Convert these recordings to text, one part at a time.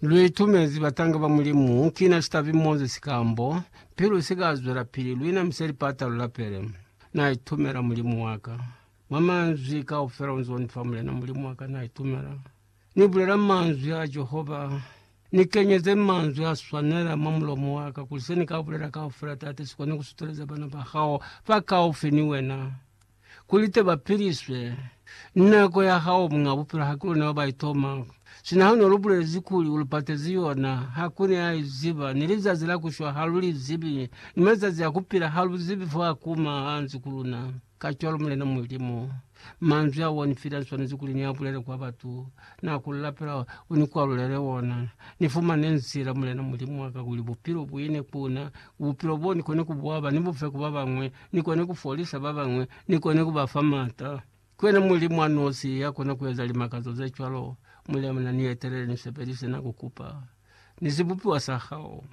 Lu itumezi batanga ba Mulimu, ki na sitabi Moses Sikambo, pilu si ka zwelapili, lu inamisa lipata lu lapele. Na itumela Mulimu wa ka. Mwa manzwi kaufela u nz'o ni fa, Mulena Mulimu wa ka, na itumela. Ni bulela manzwi a Jehova. Ni kenyeze manzwi a swanela mwa mulomo wa ka, kuli se ni ka bulela kaufela, Tate, si kone ku suteleza bana ba hao ba kaufi ni wena. Kuli te ba piliswe. Nako ya hao Muñ'a Bupilo haki lune wa ba itoma, sina ha ne lu bulezi kuli u lu patezi yona, ha ku ne a i ziba, ni lizazi la ku shwa ha lu li zibi, ni mazazi a ku pila ha lu zibi fo a kuma ha nzi ku luna. Kacwalo, Mulena Mulimu, manzwi ao wa ni fila ni swanezi kuli ni a bulele kwa batu. Na ku lapela u ni kwalulele wona. Ni fumane nzila, Mulena Mulimu wa ka, kuli Bupilo bu ine ku na, Bupilo bo ni kone ku bu aba ni bu fe ku ba bañwi, ni kona ku folisa ba bañwi, ni kona ku ba fa m'ata. Ki wena Mulimu a nosi ya kona ku eza limakazo ze cwalo. Muliamuna, ni etelele, ni sebelise na ku kupa, ni sibupiwa sa hao.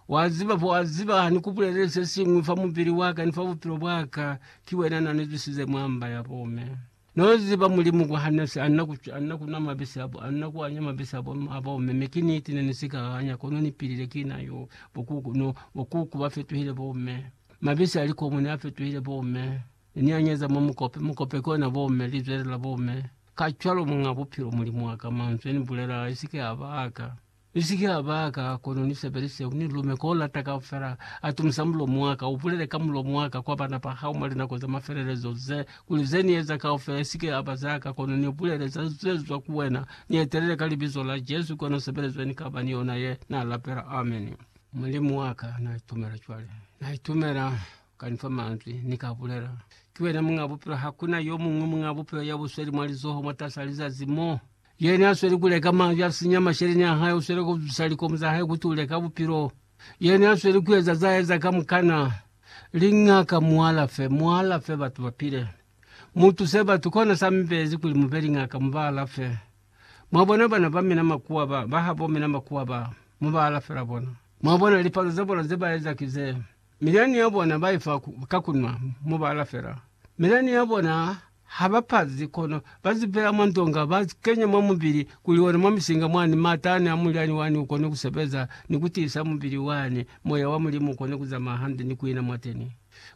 Wa ziba, for wa ziba, ha ni ku bulelele se siñwi fa mubili wa ka ni fa bupilo bwa ka, ki wena na ni zwisize mwa mba ya bo me. No ziba Mulimu kwa hana si anna ku, anna ku nwa mabisi abo, anna ku anya mabisi abo, abo mme. Mi ki niti ne ni si ka anya, kono ni pilile ki na yo. Bo kuku, no, bo kuku ba fetuhile bo mme. Mabisi a likomu ne a fetuhile bo mme. Ne ni anyeza mwa mukope, mukope ki ona bo mme, lizwele la bo mme. Kacwalo Muñ'a Bupilo, Mulimu wa ka, Manzwi a ni bulelaa, a si ke a ba a ka. Ni si ke ha baka, kono ni sebelise ku ni lume ko lata kaufela. Atumisa mulomo wa ka, ubulele ka mulomo wa ka kwa bana ba hao mwa linako za mafelelezo ze, kuli ze ni eza kaufela i si ke ya ba za ka, kono ni bulele za ze zwa ku wena. Ni etelele ka Libizo la Jesu, kono sebelezo ye ni ka ba ni yona ye, na lapela. Ameni. Mulimu wa ka, na itumela cwale. Na itumela uka ni fa manzwi ni ka bulela. Ki wena Muñ'a Bupilo, ha ku na yo muñwi Muñ'a Bupilo ya bu sweli mwa lizoho mwatas'a lizazi mo. Yena a sweli ku leka mazi a sinya masheleñi a hae, u sweli ku zwisa likomu za hae ku tule ka bupilo. Yena a sweli ku eza za eza kamukana. Lingaka, mu alafe, mu alafe, batu ba pile. Mu tuse batu, kona sa mi bezi kuli mu be lingaka, mu ba alafe. Mwa bona bana ba mina makuwa ba, ba habo mina makuwa ba, mu ba alafela bona. Mwa bona, lipalo za bona ze ba eza ki ze. Milani ya bona ba ifa ka kunwa mubala fela. Milani ya bona ha ba pazi, kono ba zipela mwa ndonga, ba kenya mwa mubili, kuli ona mwa misinga mwani matani a mulyani wani u kone ku sebeza ni ku tiisa mubili wani, moya wa Mulimu u kone ku zamaya hande ni ku ina mwateni.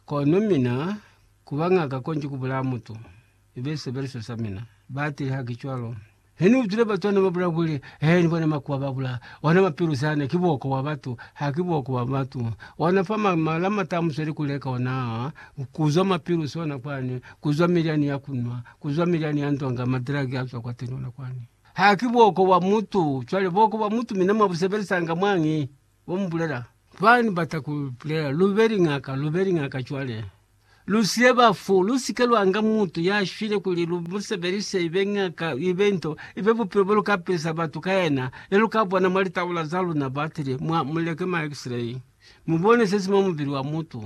Kono mina, ku ba ngaka konji ku bulaya mutu, i be sisebeliso sa mina. Ba tile, Ha ki cwalo. Ne ni utwile batu hane ba bula kuli, He, ni bona makuwa ba bula, ona mapilu zane, ki buoko bwa batu, ha ki buoko bwa batu. Ona fa ma, ma, lamata a musweli ku leka ona, ku zwa mapilu sona kwani, ku zwa milyani ya ku nwa, ku zwa milyani ya ndonga, madragi a zwa kwa tenona kwani. Ha ki buoko bwa mutu. Cwale buoko bwa mutu mina mwa bu sebelisa nga mwañi? Bo mubulela, Fani bata ku bulela, lu be liñaka, lu be liñaka cwale. Lu siye bafu, lu si ke lwa nga mutu ya shwile kuli lu mu sebelise i be ñaka, i be nto, i be bupilo bo lu ka pilisa batu ka yena, ye lu ka bona mwa litaula za luna batili, mwa, mu leke ma X-ray, mu bone se si mwa mubili wa mutu.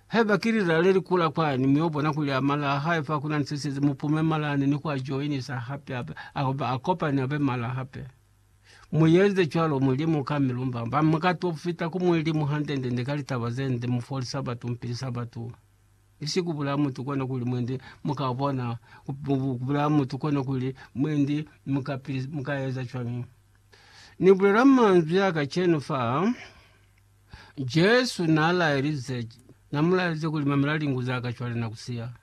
Haiba ki lilala le li kula kwani, mu yo bona kuli a mala a hae fa ku na ni se size, mu pume mala ani ni ku a joinisa hape, a, a, a kopane a be mala hape. Mu yenze cwalo, Mulimu, ka mi lumba. Ba mu ka to fita ku Mulimu hande-ndende ka litaba ze nde, mu foli Sabatu, mu pili Sabatu. Ni si ku bulaya mutu kona kuli mwendi mu ka bona, ku bulaya mutu kona kuli mwendi mu ka pili, mu ka eza cwañi? Ni bulela manzwi a kacenu fa, Jesu na laelize, na mu laelize kuli mamela lingu za ka cwale na ku siya.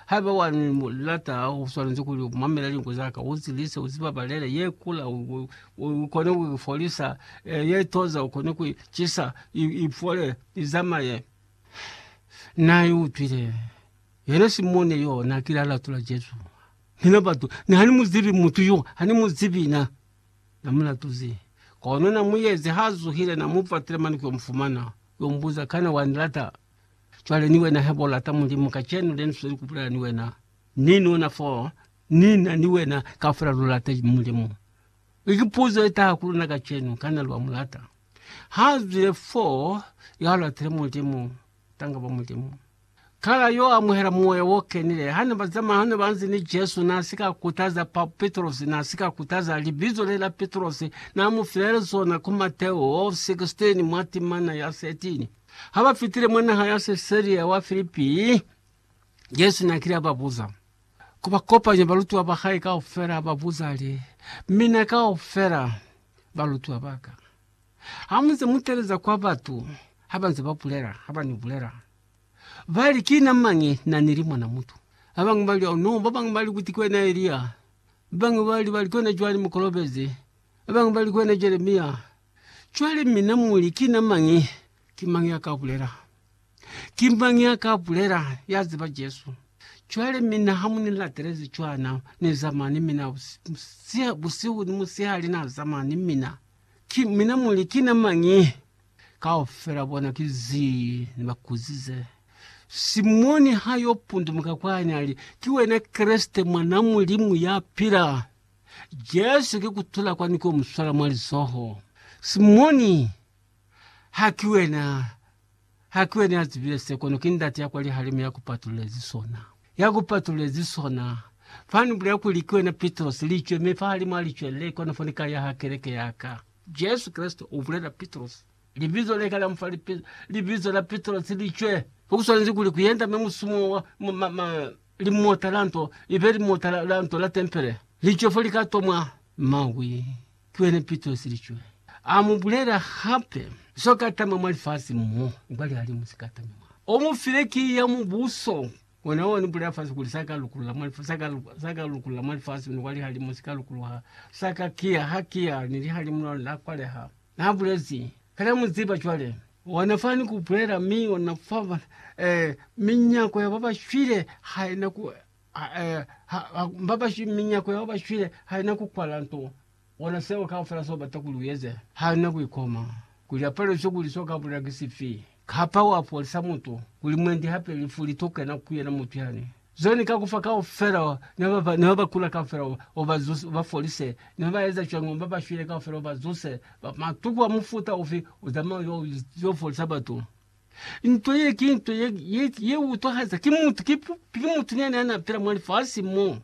Haiba wa ni lata, u swanezi kuli u mamele lingu za ka, u zilise, u zi babalele. Ye kula, u, u, u kone ku i folisa, eh, ye toza, u kone ku i cisa, i, i fole, i zamaye. Na i utwile. Yena Simone yo, na kile a latula Jesu. Mina batu, ni ha ni mu zibi mutu yo, ha ni mu zibi na. Na mu latuzi. Kono na mu yezi, ha zuhile, na mu fatile mane ku yo mu fumana, ku yo mu buza, Kana wa ni lata? Cwale ni wena hebo lata Mulimu kacenu le nusweli kubulela ni wena, ni nuna fo ni na ni wena kaufela lu lata Mulimu. I ki puzo ye taha ku luna kacenu, kana lwa mu lata? Ha zwile fo ya latile Mulimu, tanga ba Mulimu. Kala yo amuhela Moya wo Kenile. Hane ba zamaya, hane ba nzi ni Jesu, na si ka kutaza pa Petrosi, na si ka kutaza libizo le la Petrosi, na mu filela zona ku Mateo 16 mwa timana ya 13. Ha ba fitile mwa naha ya Sesaria wa Filipi, Jesu na kile a ba buza, ku ba kopanya balutiwa ba hae kaufela, a ba buza li, Mina kaufela balutiwa ba ka, ha mu nze mu teleza kwa batu, ha ba nze ba bulela, ha ba ni bulela, ba li, Ki na mañi? Na ni li Mwana mutu. Ba bañwi ba li, Au no, ba bañwi ba li kuti ki wena Elia, ba bañwi ba li, ba li ki wena Joani Mukolobezi, ba bañwi ba li ki wena Jeremia. Cwale mina muli, Ki na mañi? Ki mañi ya ka bulela? Ki mañi ya ka bulela, ya ziba Jesu? Cwale mina ha mu ni latelezi cwana, ni zama ni mina busihu ni musihali, na zama ni mina. Ki, mina muli, Ki na mañi? Kaufela bona ki zii ni ba kuzize. Simoni ha yo pundumuka kwani, ali, Ki wena Kreste, Mwan'a Mulimu ya pila? Jesu ki kutula kwani ko muswala mwa lizoho. Simoni, ha ki wena, ha ki wena ya zibile se, kono ki Ndate ya kwa lihalimu ya ku patululezi sona, ya ku patululezi sona. Fa ni bulela kuli, Ki wena Pitrosi, licwe, mi fahalimu a licwe le, kono fo ni ka yaha keleke ya ka. Jesu Kreste u bulela Pitrosi. Libizo le ka la mufa libizo la Pitrosi, licwe. Ku swanezi kuli ku yenda, mi musumo wa, ma, ma, ma, Limota la nto libe limota la, la nto la tempele. Licwe fo lika tomwa mawi. Ki wena pito ya silicwe. A mu bulela hape, Zo ka tama mwa lifasi mo, kwa lihalimu si ka tami mwa. O mu file kiyi ya Mubuso. Wena wa ni bulela fasi kuli, Sa ka lukulula mwa lifasi, sa ka, sa ka lukulula mwa lifasi, ni kwa lihalimu si ka lukuluha. Sa ka kiya, ha kiya, ni lihalimu la lona la kwaleha. Na bulezi, Kana mu ziba cwale? Ona fani ku bulela, mi ona fa mona, eh, minyako ya baba shwile ha ina ku, ha, eh, ha, ha, baba shwi, minyako ya baba shwile ha ina ku kwala nto. Ona seo kaufela so bata kuli u eze. Ha una ku ikoma kuli apalo iso kuli so ka bulela ki sifi. Kapa wa folisa mutu kuli mwendi hape lifu li to kena ku yena mutu yani. Zo ni ka kufa kaufela ne ba ba ne ba kula kaufela o ba zuse, o ba folise. Ne ba eza cwani ngo ba ba shwile kaufela o ba zuse? Ba matuku a mufuta ufi u zamaya yo yo folisa batu? Nto ye ki nto ye ye ye utwahaza. Ki mutu ki ki mutu ne ne a na pila mwa lifasi mo.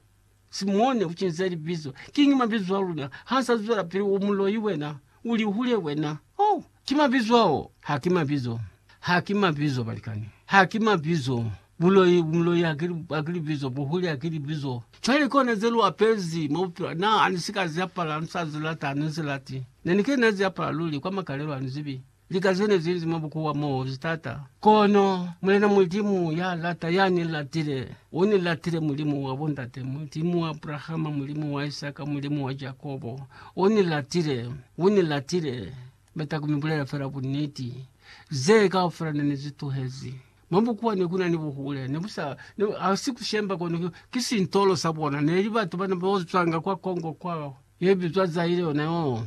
Simone, ucinzile libizo. Kiñi mabizo a luna? Ha nsa zwela pili, U muloi wena, u lihule wena. Oh, ki mabizo ao. Ha ki mabizo. Ha ki mabizo, balikani. Ha ki mabizo. Buloi, buloi ha ki, ha ki libizo. Buhuli ha ki libizo. Cwale ki ona ze lu apezi, mwa Bupilo. Na, ha ni si ka zi apala, ha ni sa zi lata, ha ni zi lati. Ne ni ke na zi apala luli, kwa makalelo, ha ni zibi. Lika zene zili mwa bukuwa mo li tata, kono Mulena Mulimu ya lata ya ni latile, u ni latile, Mulimu wa bo ndate, Mulimu wa Abrahama, Mulimu wa Isaka, Mulimu wa Jakobo, u ni latile, u ni latile. Bata ku mi bulela fela buniti. Ze kaufela ne ni zi tuhezi. Mwa bukuwa ne kuna ni buhule, ne bu sa, ne, ha si ku shemba, kono ki, ki sintolo sa bona. Ne li batu bana bo zwanga kwa Congo kwa, ye bizwa Zaire yona yoo.